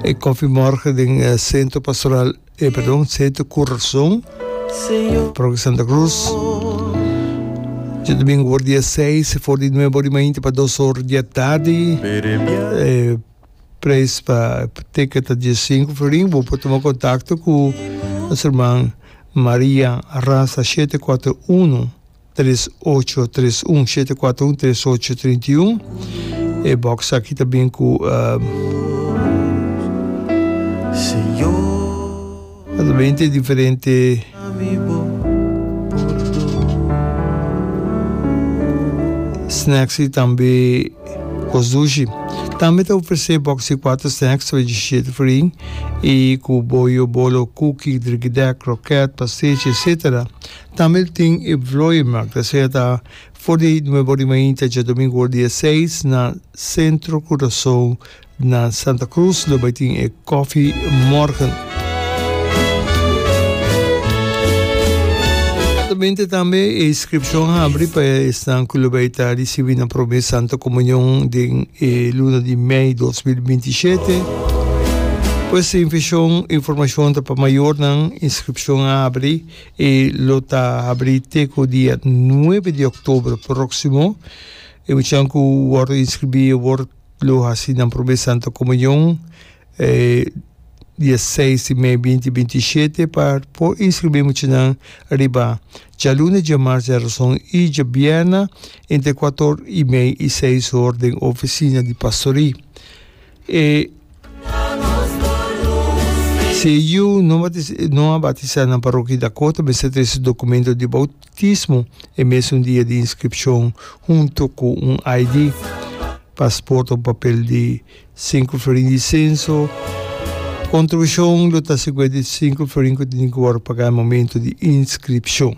E Koffie Morgen den e Centro Pastoral, e perdon, Centro Corazon, Parroquia Santa Cruz. Djodomingo por dia 6 for di nueve ora y mainti pa dos ora di atardi. E prijs pa ticket ta dies sinku florin. Bo por tuma contacto cu nos herman Maria Raza shete kuater unu. tres ocho tres un shete cuatro un tres ocho trinta y un e box aki ta bin ku a ta binte diferente snacks y tambe kos dushi tambe ta ofrese box di cuatro snacks tra diecisiete fering y ku boyo bolo cookie drikidèk kroket pastechi etsetera Tambe tin e vlooienmarkt, ta seta for di Nuevo Rimainta dje domingo ora di e seis na Centro Curaçao na Santa Cruz, lo bai tin e Koffiemorgen. Prontamente tambe e inscripcion a habri pa esnan cu lo bai ta ricibi nan prome Santa Comunion den e luna di mei dos mil binti shete. Pues informacion ta pa mayornan, inscripcion a habri. E lo ta habrí te ku dia nuebe di oktobro próksimo. E muchanan ku wòrdu inskribí e wòrdu lo hasi nan promé Santu Komunion dia seis di mei binti binti i shete. Pa por inskribí e muchanan riba djaluna, djamars, djarason i djabierna entre kuator i mei i seis hor den ofisina di pastorí. E. Si e yu no a batisá nan parokia di Dakota, mester trese su dokumento di boutismo e mesun dia di inskripshon huntu ku un ID, pasport òf papel di sinku florin di senso. Kontribushon lo ta siguwenti di sinku florin ku tin ku wòrdu pagá momentu di inskripshon.